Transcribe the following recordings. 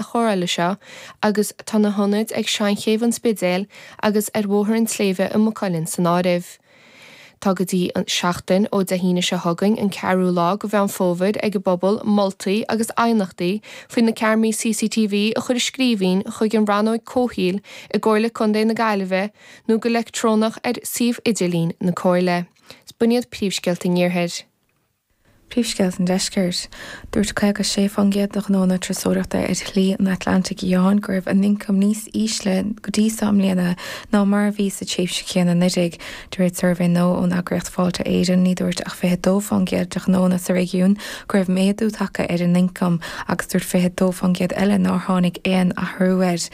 sa chomhairle seo agus tá na hionaid ag Seanchéibh an Spidéil agus ar Bhóthar an tSléibhe i Maigh Cuilinn san áireamh. Tá go dtí seachtain ó Dé hAoine seo chugainn, an 4ú lá de Mheán Fómhair, ag an bpobal moltaí agus aighneachtaí faoi na ceamaraí CCTV a chur i scríbhinn chuig an Rannóg Comhshaoil i gComhairle Contae na Gaillimhe nó go leictreonach ar shuíomh idirlín na Comhairle. Is b'shin iad Príomhscéalta an Iarthair. Príomhscéalta an deiscirt. Dúirt 56% de ghnónna turasóireachta ar Shlí an Atlantaigh Fhiáin go raibh a n-ioncam níos ísle go dtí seo i mbliana ná mar a bhí sa tréimhse chéanna anuraidh, de réir suirbhé nua ón eagraíocht Fáilte Éireann. Ní dúirt ach 22% de ghnónna sa réigiún go raibh méadú tagtha ar a n-ioncam agus dúirt 22% eile nár tháinig aon athrú air.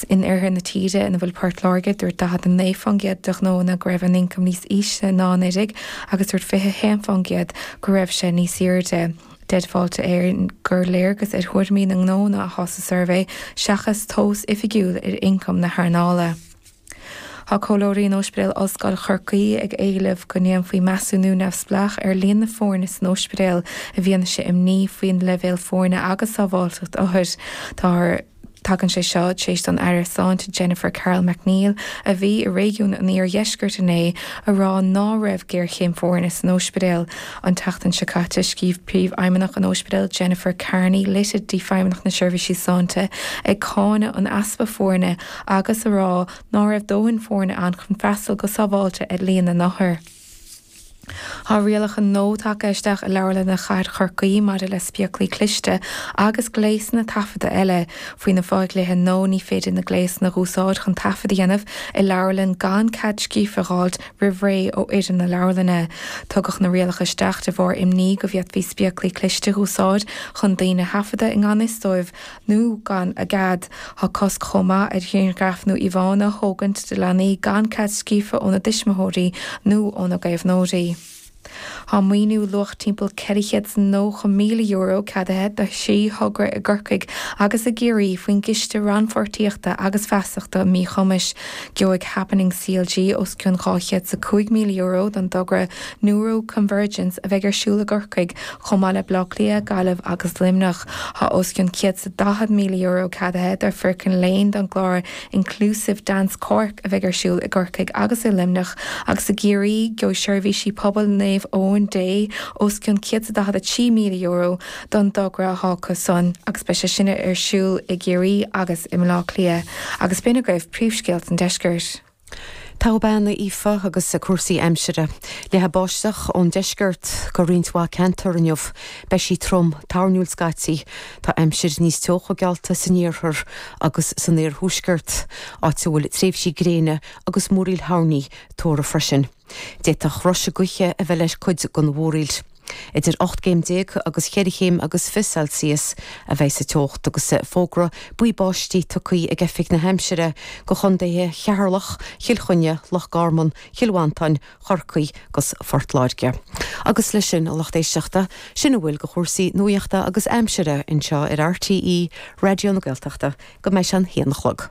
In oirthear na tíre, ina bhfuil Port Láirge, dúirt 49% de ghnóanna go raibh a n-ioncam níos ísle ná anuraidh agus dúirt 21% go raibh sé níos airde. Deir Fáilte Éireann gur léargas ar thuairimí na ngnóanna atá sa suirbhé seachas tomhas oifigiúil ar ioncam na hearnála. Tá comhairleoirí in Ospidéal Ollscoil Chorcaí ag éileamh go ndéanfaí measúnú neamhspleách ar líon na foirne san ospidéal i bhfianaise imní faoin leibhéal foirne agus sábháilteacht othar. Táthar. Tagann sé seo tar éis don Aire Sláinte Jennifer Carroll MacNeill, a bhí i réigiún an iardheiscirt inné, a rá ná raibh géarchéim foirne san ospidéal. An tseachtain seo caite, scríobh Príomhfheidhmeannach an ospidéil Jennifer Kearney litir go dtí Feidhmeannacht na Seirbhíse Sláinte ag cáineadh an easpa foirne agus a rá ná raibh dóthain foirne ann chun freastal go sábháilte ar líon na n-othar. Tá rialacha nua tagtha isteach i Leabharlanna Chathair Chorcaí maidir le spéaclaí cliste agus gléasanna taifeadta eile. Faoi na fo-dhlíthe nua ní féidir na gléasanna dh'úsáid chun taifead a dhéanamh i leabharlann gan cead scríofa dh'fháilt roimh ré ó fhoireann na leabharlainne. Tugadh na rialacha isteach de bharr imní go bhféadfaí spéaclaí cliste dh'úsáid chun daoine a thaifeadadh i ngan fhios dóibh nó gan a gcead. Tá cosc chomh maith ar ghrianghraif nó íomhánna a thógaint de leanaí gan cead scríofa óna dtuismitheoirí nó óna gcaomhnóirí. Tá maoiniú luach timpeall €490,000 ceadaithe do thrí thogra i gCorcaigh agus i gCiarraí faoin gCiste Rannpháirtíochta agus Feasachta Míchumais. Gheobhaidh Happening CLG os cionn €205,000 don dtogra Neuro-convergence a bheidh ar siúl i gCorcaigh chomh maith le Baile Átha Cliath, Gaillimh agus Luimneach. Tá os cionn €140,000 ceadaithe do Firkin Crane don gclár Inclusive Dance Cork a bheidh ar siúl i gCorcaigh agus i Luimneach agus i gCiarraí, gheobhaidh Seirbhísí Pobail Naomh Eoin Dé os cionn €143,000 don dtogra thágtha san agus beidh sé sin ar siúl i gCiarraí agus i mBleá Cliath agus b'in agaibh príomhscéalta an deiscirt. Togha bean, a Aoife, agus cúrsaí aimsire. Leathfaidh báisteach ón deisceart go roinnt mhaith ceantar inniu. Beidh sí trom, toirniúil scaití. Tá aimsir níos teocha geallta san iarthar agus san oirthuaisceart, áit a bhfuil tréimhsí gréine agus múraíl thoirní tuartha freisin. D'fhéadfadh roiseadh gaoithe a bheith le cuid den mhúraíl. Idir ocht gcéim déag agus cheithre chéim agus fiche Celsius a bheidh sa teocht agus fógra buí báistí tugtha ag Oifig na hAimsire do chontaetha Cheatharlach, Chill Chainnigh, Loch Garman, Chill Mhantáin, Chorcaí agus Phort Láirge. Agus leis sin, a lucht éisteachta, sin a bhfuil de chúrsaí nuachta agus aimsire anseo ar RTÉ Raidió na Gaeltachta go mbeidh sé an haon a chlog.